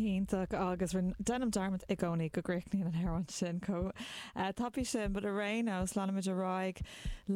Iontach agus deinim dearmad i gcónaí go gcríochnaíonn an t-amhrán sin chomh tapaidh sin but ar aon nós leanfaimid ar aghaidh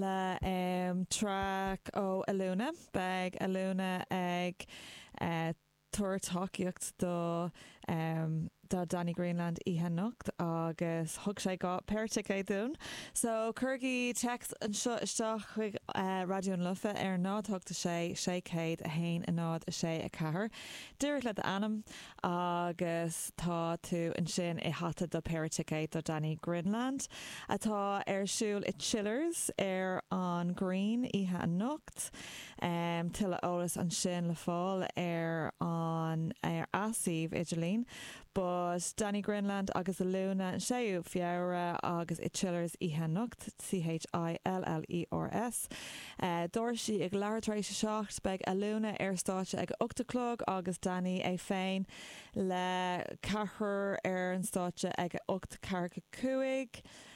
le track ó Alúna. Beidh Alúna ag. tabhairt tacaíocht do do Danny Greenland oíche anocht agus thug sé dhá péire ticéad dúinn. So cuirigí text anseo isteach chuig Raidió na Life ar 0 8 6 601 0 6 4 díreach le d'ainm agus tá tú ansin i hata do phéire ticéad do Danny Greenland atá ar siúl i Chillers ar an Green oíche anocht. Art. Tuilleadh eolais ansin le fáil ar an suíomh idirlín. But Danny Greenland agus Alúna, 6ú Feabhra agus i Chillers oíche anocht, C.H.I.L.L.E.R.S. Doirse ag leathuair tar éis a seacht. Beidh Alúna ar stáitse ag a ocht a chlog agus Danny é féin le ceathrar ar an stáitse ag a ocht, ceathair cúig.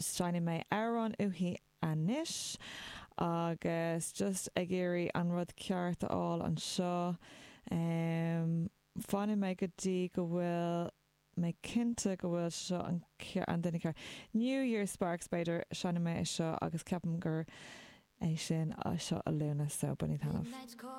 Seinnfidh mé amhrán uaithi anois agus just ag iarraidh an rud ceart a fháil anseo. Fanfaidh mé go dtí go bhfuil mé cinnte go bhfuil seo an duine ceart. New Year Sparks b'fhéidir, seinnfidh mé é seo agus ceapaim gur é sin seo Alúna, so bainigí taitneamh.